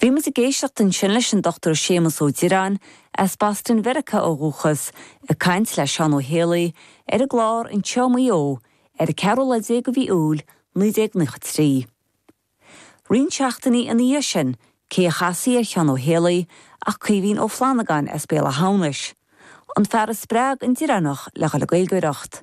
Bhí muid ag éisteacht ansin leis an Dr Séamus Ó Direáin, as Boston Mheiriceá ó dhúchas, ag caint le Seán Ó hÉalaí ar an gclár Anseo Maigh Eo ar a ceathrú lá déag de mhí Iúil 1993. Roinnt seachtainí ina dhiaidh sin, cé a chasfaí ar Sheán Ó hÉalaí ach Caoimhín Ó Flannagáin as Béal Átha hAmhnais, an fear a spreag an Direánach le dhul ag Gaeilgeoireacht.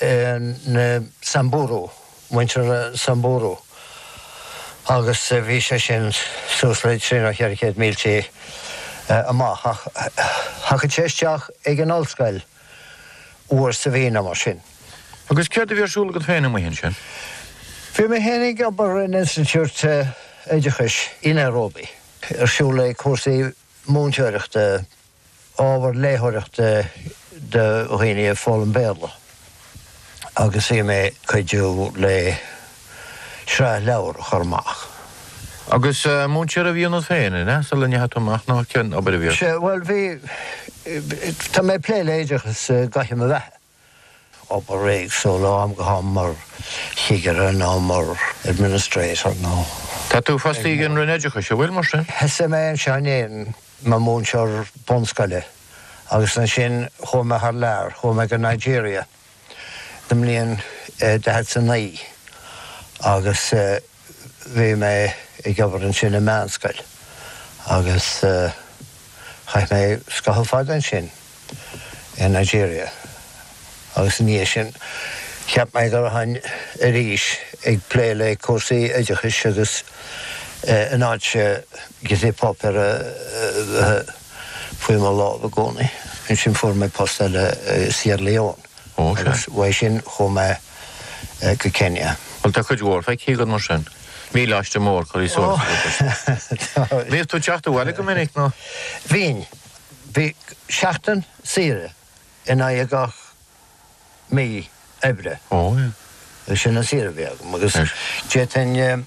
na Samburu, muintir na Samburu, agus bhí sé sin suas le trí nó cheithre chéad mílte amach, ach thagadh sé isteach ag an ollscoil uair sa mhí nó mar sin. Agus céard a bhí ar siúl agat féin amuigh ansin? Bhí mé féin ag obair in institiúid oideachais i Nairobi, ar siúl ag cúrsaí múinteoireachta. ábhar léitheoireachta do dhaoine ag foghlaim Béarla agus bhí mé ag cuidiú le sraith leabhar a chur amach. Agus múinteoir a bhí ionat féin, an ea, sula ndeachaigh tú amach, nó cén obair a bhí ort? Sea, bhuel, bhí. tá mé ag plé le oideachas i gcaitheamh mo bheatha. obair éagsúil ó am go ham mar chigire nó mar administrator nó ag. Tá tú fostaithe ag an Roinn Oideachais, an bhfuil, mar sin? Thosaigh mé anseo in Éirinn mar mhúinteoir bunscoile agus ansin chuaigh mé thar lear, chuaigh mé go Nigeria i mbliain 49 agus. bhí mé ag obair ansin i meánscoil agus chaith mé scaitheamh fada ansin i Nigeria agus ina dhiaidh sin cheap mé go rachainn arís ag plé le cúrsaí oideachais agus in áit giotaí páipéir a bheith faoi mo lámh i gcónaí, ansin fuair mé post eile i Sierra Leone. Ó, sea. Agus uaidh sin, chuaigh mé go Kenya. Bhuel, tá cuid mhór feicthe agat, mar sin. Míleáiste mór curtha suas agat, ar seisean. Bhíodh tú ag teacht abhaile go minic, nó? Bhínn. Bhí seachtain saoire in aghaidh gach mí oibre. Ó, yeah. Sin an saoire a bhí agam, agus d'fhéadfainn.